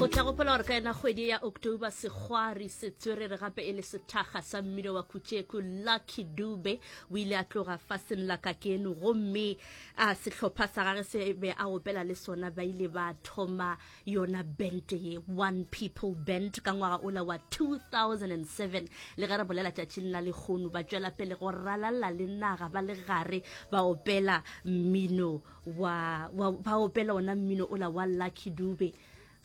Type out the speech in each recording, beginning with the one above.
go tla gopola gore ka yena kgwedi ya october segwari se tswerere gape e le sethaga sa mmino wa kutšeku lucky dube o ile a tloga fa senla ka keno gomme a sehlopha sa gage se be a opela le sona ba ile ba thoma yona band ye one people band ka ngwaga ola wa 2007 le ge re bolela tšatšing la lekgono ba tšwela pele go ralala le naga ba le gare ba opela mmino wa, wa ba opela ona mmino o la wa lucky dube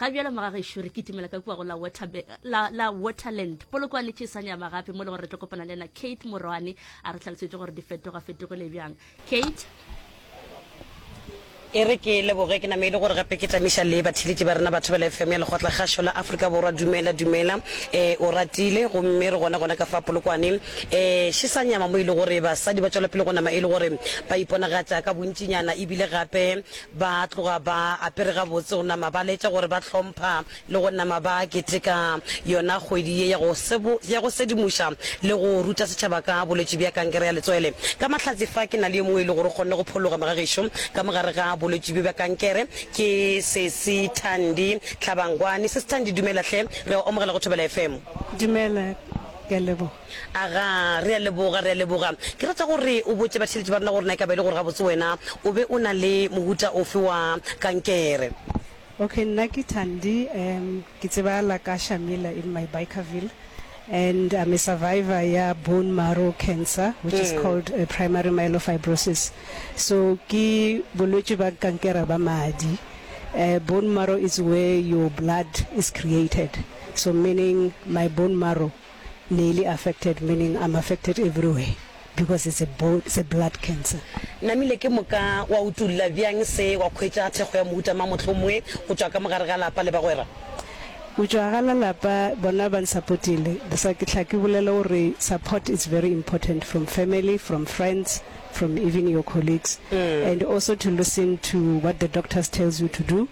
ga bjalo magagešo re kitimela ka kua go la, water, la, la waterland polokwane ke sa nyama gape mo le gore re tlo kopana le ena kate morwane a re tlhalosetše gore di fetoga fetogile bjang kate e re ke leboge ke name e le gore gape ke tlamiša le batheletši ba rena batho ba le fm ya lekgotla kgašo la afrika borwa dumela dumela um o ratile gomme re gona gona ka fa polokwane Ee, še sa nyama mo e le gore basadi ba tšwela pele go nama e le gore ba iponagatša ka bontšinyana e bile gape ba tloga ba apere gabotse go nama ba laetša gore ba hlompha le go nama ba keteka yona kgwedi ye ya go ya go sedimoša le go ruta setšhaba ka bolwetši bja kankere ya letswele. Ka mahlatse fa ke na le yo mongwe e le gore o kgonne go phologa moga gešo ka mo gare ga bolwetši bjo bja kankere ke Sesi Thandi Tlhabangwane. Sesi Thandi dumela hle, re a go amogela go Thobela FM. Dumela Ke a leboga. Aga, re a leboga, re a leboga. Ke rata gore o botše batheeletši ba rena gore na e ka ba e le gore gabotse wena o be o na le mohuta ofe wa kankere. Okay, nna ke Thandi, um ke tsebahala ka Shamila in my Bikerville and I'm a survivor ya bone marrow cancer which is called primary myelofibrosis. So ke bolwetši ba kankera ba madi. Bone marrow is where your blood is created. So meaning my bone marrow ne ili affected meaning I'm affected everywhere because it's a bone it's a blood cancer. Namile ke moka wa utulla byang se wa khwetša thekgo ya mohuta mang mohlomue go tšwa ka mogare ga lapa le bagwera? Go tšwa ga la lapa bona ba nsapotile bsa ke hla ke bolela go re support it's very important from family, from friends, from even your colleagues and also to listen to what the doctors tells you to do.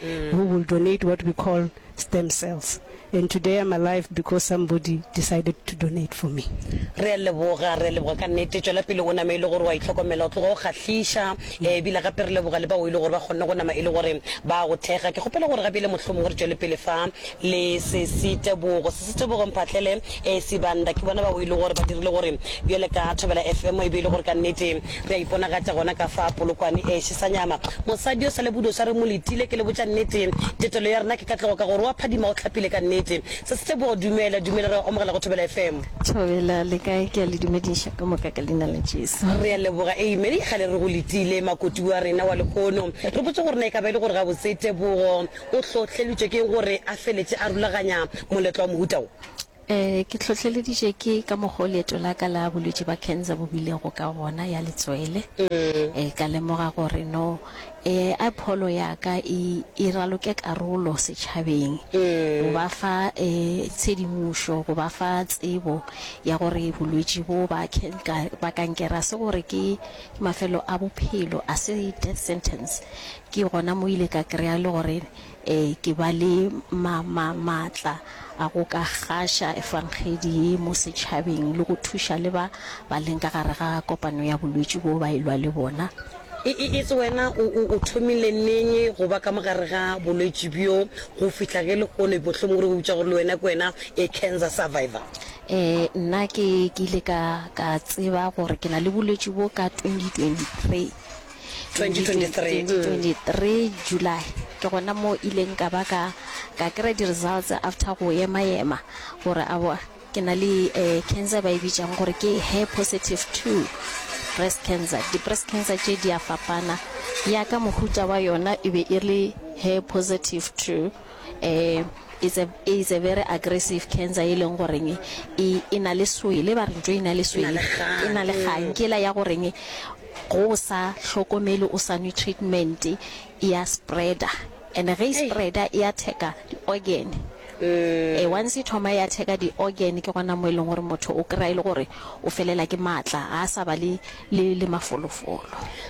who will donate what we call stem cells and today I'm alive because somebody decided to donate for me. re a leboga re a leboga ka nnete tšwela pele o name e le gore wa itlhokomela o tloga o kgahliša eh, ebile gape re leboga le bao e le gore ba kgonne go nama e le gore ba go thekga ke kgopela gore gape e le mohlomongwe re tšwele pele fa le Sesi Tebogo. Sesi Tebogo Mphahlele, ee Sibanda, ke bona bao e lego gore ba dirile gore bjale ka Thobela FM e be e le gore ka nnete re a iponagatša gona ka fa Polokwane. Ee Shisanyama, mosadi o sa le bodoša re mo letile. Ke le botša nnete, tetelo ya rena ke ka tlogo ka gore o a phadima, o hlapile ka nnete. Sesi Tebogo dumela, dumela, re a go amogela go Thobela FM. Thobela, le kae? Ke a le dumediša ka moka ka Leina la Jesu. Re a leboga. Amen. Kgale re go letile, makoti wa rena wa lehono. Re botše gore na e ka ba e le gore gabotse Tebogo O hlohleleditšwe ke eng gore a feletše a rulaganya moletlo wa mohuta wo? Ee, ke hlohleleditšwe ke ka mokgwa o leeto la ka la bolwetši bja khensa bo bilego ka gona ya letswele. Ee, ka lemoga gore no ee a pholo ya ka e e raloke karolo setšhabeng, go ba fa ee tshedimošo, go ba fa tsebo ya gore bolwetši boo ba ba kankere ga se gore ke mafelo a bophelo, ga se death sentence. Ke gona mo ile ka kry-a le gore ke ba le maatla a go ka gaša efangedi ye mo setšhabeng le go thuša le ba ba leng ka gare ga kopano ya bolwetši boo ba e lwa le bona. Itse wena o thomile neng go ba ka mo gare ga bolwetši bjo go fihla ge lehono mohlomong re eupša gore le wena ke wena cancer survivor? Nna ke ile ka tseba gore ke na le bolwetši bjo ka 2023. 2023 July ke gona mo ileng ka ba ka ka kry di results after go yema yema gore a bo ke na le eh, cancer ba e bitšang gore ke hair positive 2 breast cancer di breast cancer tše di a fapana ya ka mohuta wa yona e be e le hair positive 2 eh it's a it's a very aggressive cancer e leng goreng e e na le swele ba re ntho e na le swele e na le kgang ke la ya goreng Ge o sa hlokomele o sa nwe treatment e ya spreader and ge e spreader e attack-a di organ. E once e thoma e attack-a di organ ke gona mo e leng gore motho o kry-a e le gore o felela ke maatla ga a sa ba le mafolofolo.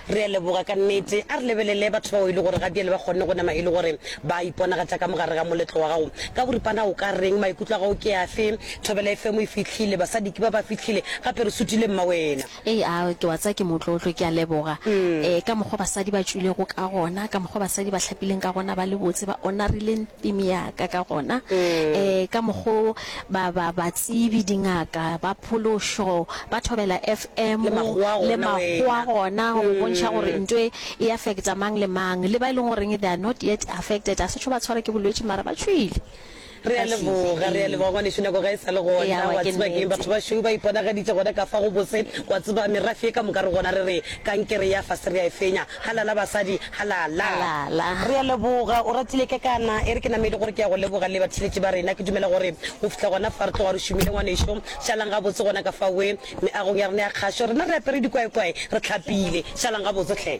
Re a leboga ka nnete. A re lebelele batho bao e le gore ga bjale ba kgonne go nama e le gore ba a iponagatša ka mogare ga moletlo wa gago. Ka boripana o ka reng? Maikutlo a gago ke afe? Thobela FM e fihlile, basadi ke ba ba fihlile, gape re sutile mmawena. Ee, a ke wa tseba ke motlotlo, ke a leboga ee ka mokgwa basadi ba tšwilego ka gona, ka mokgwa basadi ba hlapileng ka gona, ba le botse, ba onarileng theme ya ka ka gona, ee ka mokgwa o ba, ba, batsebi, dingaka, ba phološo, ba Thobela FM, Le makgowa a le gona makgowa a wena. gona go bontšha gore ntho e e affecta mang le mang, le ba e leng goreng they are not yet affected, a se tšo ba tshwara ke bolwetši mara ba tšwile. Re a leboga, re a leboga ngwanešu, nako ga e sa le gona. Wa tseba keng, batho ba šweu ba iponagaditše gona ka fa go bose. Wa tseba, merafe ye ka moka re gona re re, Kankere ya fase re a e fenya. Halala, basadi, halala! Re a leboga. O ratile ke kana? E re ke namedi gore ke ya go leboga le batheeletši ba rena. Ke dumela gore go fihla gona fa re tloga re šomile, ngwanešu, šalang gabotse gona ka fa we, meagong ya rena ya kgašo, rena re apere dikwaekwae, re tlhapile. Šalang gabotse hle!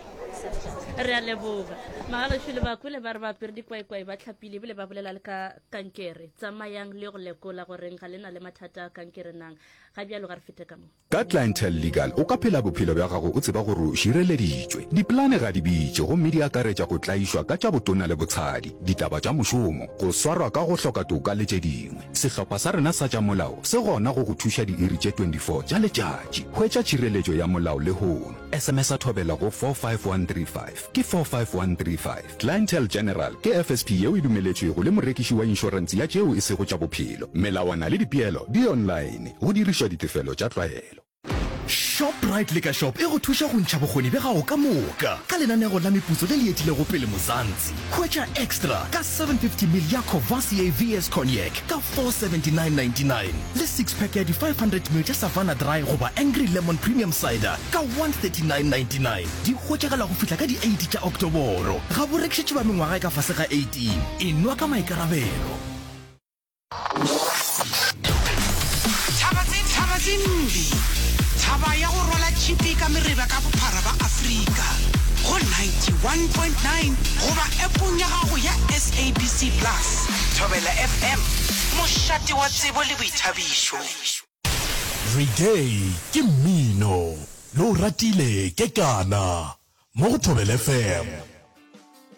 Re a leboga. Magarošu le Bakule ba re ba apere dikwaekwae, ba tlhapile. pele bile ba bolela le ka kankere tsamayang le go lekola goreng ga le na le mathata a kankere nang ga bjalo ga re fete ka mo Ka Clientele Legal o ka phela bophelo bja gago o tseba gore o šireleditšwe. Dipolane ga di bitše gomme di akaretša go tlaišwa ka tša botona le botshadi, ditaba tša mošomo, go swarwa ka go hloka toka le tše dingwe. Sehlopha sa rena sa tša molao se gona go go thuša diiri tše 24 tša letšatši. Hwetša tšhireletšo ya molao lehono. Sms-a thobela go 45135. Ke 45135. Clientele General ke FSP yeo e dumeletšwego le morekiši wa inšorense ya tšeo e sego tša bophelo. Melawana le dipeelo di online, go dirišwa ditefelo tša tlwaelo. Shoprite Liquor Shop e go thuša go ntšha bokgoni bja gago ka moka ka lenanego la meputso le le etilego pele Muzansi. Hwetša Extra ka 750ml ya Courvoisier VS Cognac ka 479.99 le six-pack ya di 500ml tša Savanna Dry goba Angry Lemon Premium Cider ka 139.99. Di hwetšagala go fihla ka di 8 tša Oktoboro. Ga bo rekišetšwe ba mengwaga e ka fase ga 18. E nwa ka maikarabelo. Thaba tse mbi. Thaba ya go rwala tšhipi ka mereba ka bophara ba Afrika. Go 91.9 goba appong ya gago ya SABC Plus. Thobela FM, mošate wa tsebo le boithabišo. Reggae ke mmino yo o ratile ke kana mo go Thobela FM.